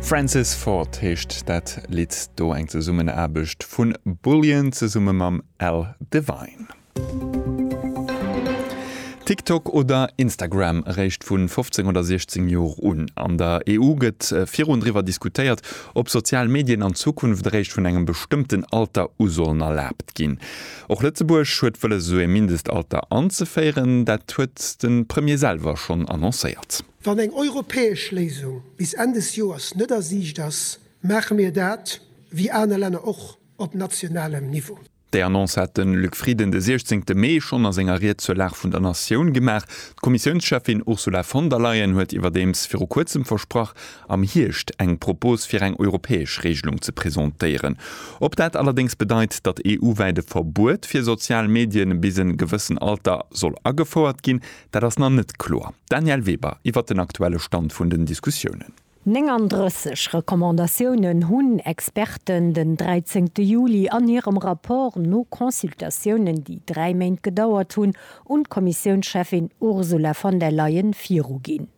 Francis Ford heescht dat Lidd do, eng Zesummenaarbecht vu Bullion zesumme mam Al Devine. TikTok oder Instagram, eréischt vu 15 oder 16 Joer un. An der EU gëtt virun driwwer diskutéiert, ob sozial Medien an Zukunft eréischt vun engem bestëmmten Alter u sollen erlaabt ginn. Och Lëtzebuerg huet wëlles esou ee Mindestalter anzeféieren. Dat huet de Premier selwer schonn annoncéiert. Wann eng europäesch Léisung bis Enn des Joers net a Siicht ass, maache mir dat, wéi aner Länner och, op nationalem Niveau. Déi Annonce hat de Luc Frieden de 16 Mee schonn a senger Ried zur Lag vun der Natioun gemaach. D'Kommissiounscheffin Ursula von der Leyen huet iwwerdeems viru kuerzem versprach, am Hierscht eng Propos fir eng europäesch Reegelung ze presentéieren. Ob dat allerdéngs bedeit, datt EU-wäit e Verbuet fir sozial Medien bis en gewëssen Alter soll agefouert ginn, Dat ass nach net kloer. Danièle Weber iwwert den aktuelle Stand vun den Diskussiounen. 39 Recommandatiounen hunn Experten den 13 Juli an hirem Rapport no Consultatiounen, déi dräi Méint gedauert hunn, un d'Kommissiounscheffin Ursula von der Leyen viruginn.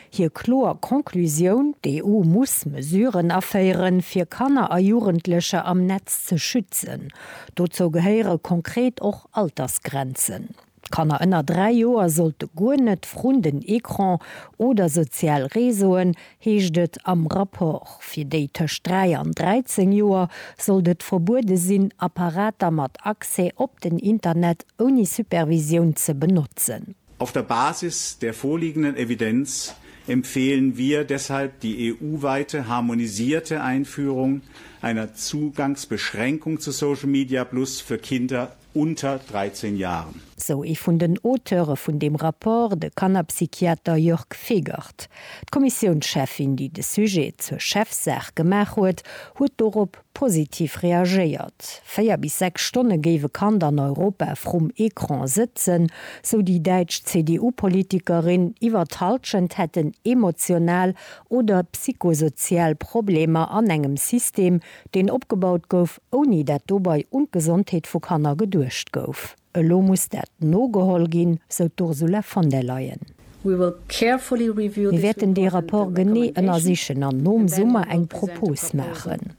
Hir kloer Conclusioun, D'EU muss Mesuren aféieren, fir Kanner a Jugendlecher am Netz ze schützen. Dozou gehéiere konkret och Altersgrenzen. Kanner ënner 3 Joer sollte guer net vrun den Ecran oder sozial Réseauen, heescht et am Rapport. Fir déi tëscht 3 an 13 Joer sollt et verbuede sinn, Apparater mat Accès op den Internet ouni Supervisioun ze benotzen. Auf der Basis der vorliegenden Evidenz empfehlen wir deshalb die EU-weite harmonisierte Einführung einer Zugangsbeschränkung zu Social Media Plus für Kinder unter 13 Jahren. Sou ee vun den Auteure vun deem Rapport, de Kannerpsychiater Jörg Fegert. D'Kommissiounscheffin, déi de Sujet zur Chefsaach gemaach huet, huet dorop positiv reagéiert. Véier bis sechs Stonne géif e Kand an Europa vrum Ecran sëtzen, sou déi däitsch CDU-Politikerin. Iwwer d'Hallschent hätten emotional oder psychosozial Problemer an engem System, deen opgebaut gouf, ouni dat dobei un d'Gesondheet vu Kanner geduecht gouf. Elo muss dat nogeholl ginn, sou d'Ursula von der Leyen. Mir wäerten dee Rapport genee ënnersichen an nom Summer eng Propos maachen.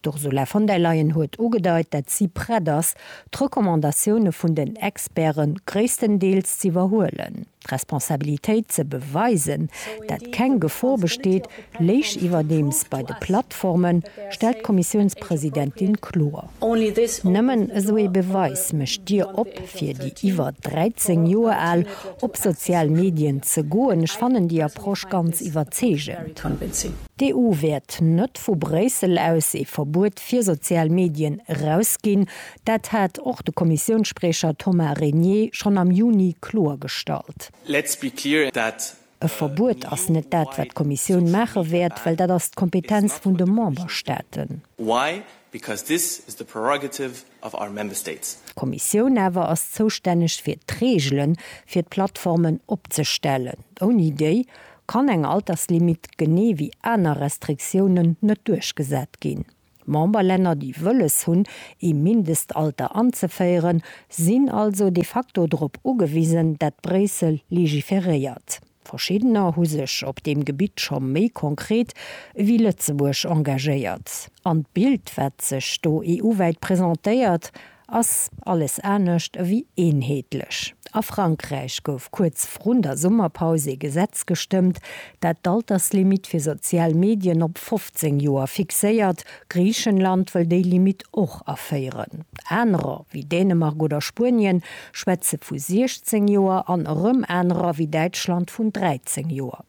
D'Ursula von der Leyen huet ugedeit, dat si prett ass, d'Recommandatioune vun den Experte gréisstendeels z'iwwerhuelen. D'Responsabilitéit ze beweisen, dat keng Gefor besteet, léich iwwerdeems bei de Plattformen, stellt d'Kommissiounspresidentin kloer. Nëmmen esou ee Beweis mécht d'Dier op fir déi iwwer 13 Joer al, op sozial Medien ze goen. Ech fannen déi Approche ganz iwwerzeegend. D'EU wäert net vu Bréissel aus ee Verbuet fir sozial Medien erausginn. Dat hat och de Kommissiounsspriecher Thomas Régnier schonn am Juni kloergestallt. E Verbuet ass net dat, wat d'Kommissioun maache wäert, well dat ass d'Kompetenz vun de Memberstaaten. D'Kommissioun awer ass zoustänneg fir d'Reegele fir d'Plattformen opzestellen. Ouni déi kann eng Alterslimit, genee wéi aner Restriktiounen, net duerchgesat ginn. D'Memberlänner, déi wëlles hunn, ee Mindestalter anzeféieren, sinn also de facto drop ugewisen, dat Bréissel legiferéiert. Verschiddener hu sech op deem Gebitt scho méi konkret ewéi Lëtzebuerg engagéiert. An d'Bild, wat sech do EU-wäit presentéiert, Ass alles anescht ewéi eenheetlech. A Frankräich gouf kuerz vrun der Summerpaus ee Gesetz gestëmmt, dat d'Alterslimitt fir sozial Medien op 15 Joer fixéiert. Griichenland wëll déi Limitt och aféieren. Anerer, wéi Dänemark oder Spuenien, schwätze vu 16 Joer an erëm anerer, wéi Däitschland, vun 13 Joer.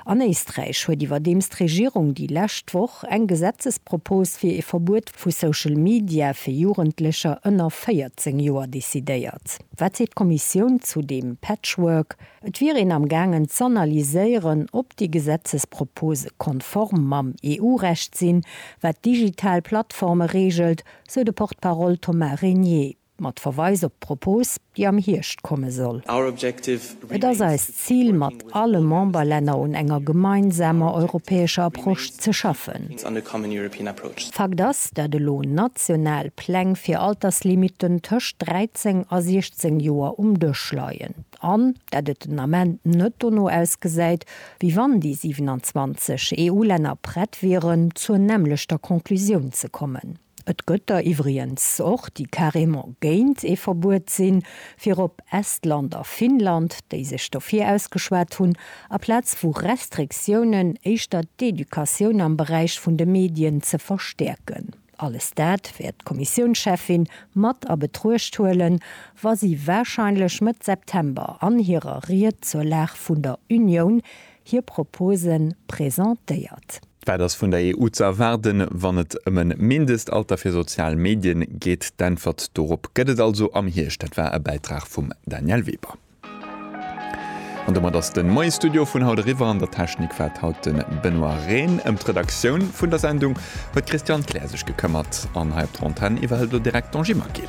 An Éisträich huet iwwerdeems d'Regierung déi lescht Woch eng Gesetzespropos fir ee Verbuet vu Social Media fir Jugendlecher ënner 14 Joer decidéiert. Wat seet d'Kommissioun zu deem Patchwork? Et wier een am gaangen z'analyséieren, ob déi Gesetzespropose konform mam EU-Recht sinn, wat digital Plattforme reegelt, sou de Porte-parole Thomas Régnier. Mat Verweis op d'Propos, déi am Hierscht komme soll. Et ass eist Zil, mat alle Memberlänner un enger gemeinsamer europäescher Approche ze schaffen. Fakt ass, dat elo national Pläng fir Alterslimiten tëscht 13 a 16 Joer um Dësch leien an dat et den Ament net dono ausgesäit, wéi wann déi 27 EU-Länner prett wieren, zur nämmlechter Conclusioun ze kommen. Et gëtt der iwwriens och, déi carrément géint ee Verbuet sinn, virop Estland a Finnland, déi sech dofir ausgeschwat hunn, aplaz vu Restriktiounen éischter d'Educatioun am Beräich vun de Medien ze verstäerken. Alles dat wäert d'Kommissiounscheffin mat a Betruecht huelen, wa si warscheinlech Mëtt September an hirer Ried zur Lag vun der Unioun hir Propose presentéiert. Wat ass vun der EU ze erwaarden, wann et ëm e Mindestalter fir sozial Medien geet? D'Äntwert dorop gëtt et also am Hierscht. Dat war e Bäitrag vum Danièle Weber. An domat ass de Moie Studio vun haut eriwwer. An der Technik war haut de Benoît Rehn. Ëm d'Redaktioun vun der Sendung huet d'Christiane Kleer sech gekëmmert. An hei op der Antenn iwwerhëlt elo direkt d'Angie Maquil.